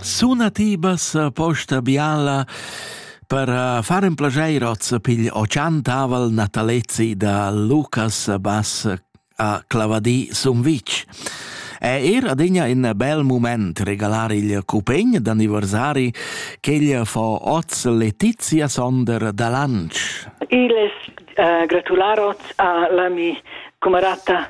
Suna ti bassa posta biala per uh, far in plageir hoz pigl o chantavel natalezi da Lucas Bass a Clavadì Sumvitg. È er adegna in bel moment regalar il cupegn d'anniversari ch'el fo oz Letizia Sonder da Lanz. Il es uh, gratular oz a l'ami cumarata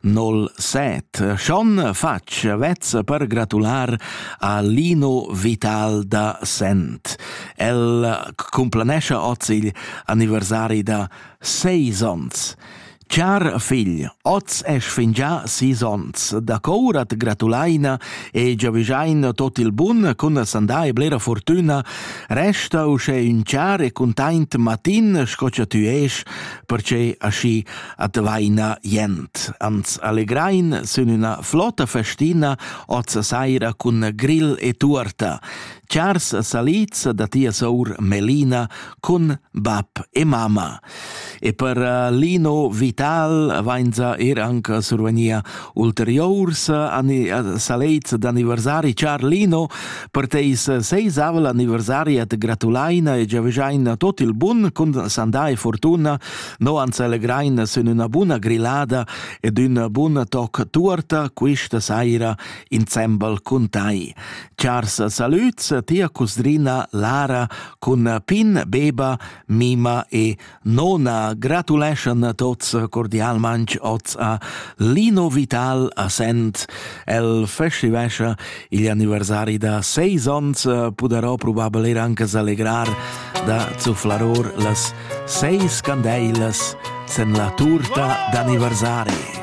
nol set. Schon facc vezza per gratular a Lino Vital da Sent. El complanescia oz il anniversari da seis ons. Char figl, oz es fingià sis ons. Da cour at gratulaina e giavüschaina tot il bun cun sandà e blera fortüna. Resta uschè ün char e cuntaint matin sco cha tü esch, perche aschi advaina jent. Ans allegrain sün üna flotta festina oz saira cun grill e tuorta. Chars salids da tia sour Melina cun bab e mama. E per eh, Lino Vital vainza er anche survenia ulteriors eh, salids d'anniversari. Char Lino, per teis seisavel anniversari at gratulaina e giaveschaina tot il bun cun sandà e fortuna No ans allegraina sün üna buna grillada ed üna buna tocca tuorta quista saira insembel cun tai. Chars salüds tia cusdrina Lara cun Pin, Beba, Mima e Nona gratuleschan tots cordialmanch oz a Lino Vital a Sent El festivescha igl anniversari da seis ons, pudarò probabel er anche s'allegrar da zufflaror las seis candeilas sen la turta d'anniversari.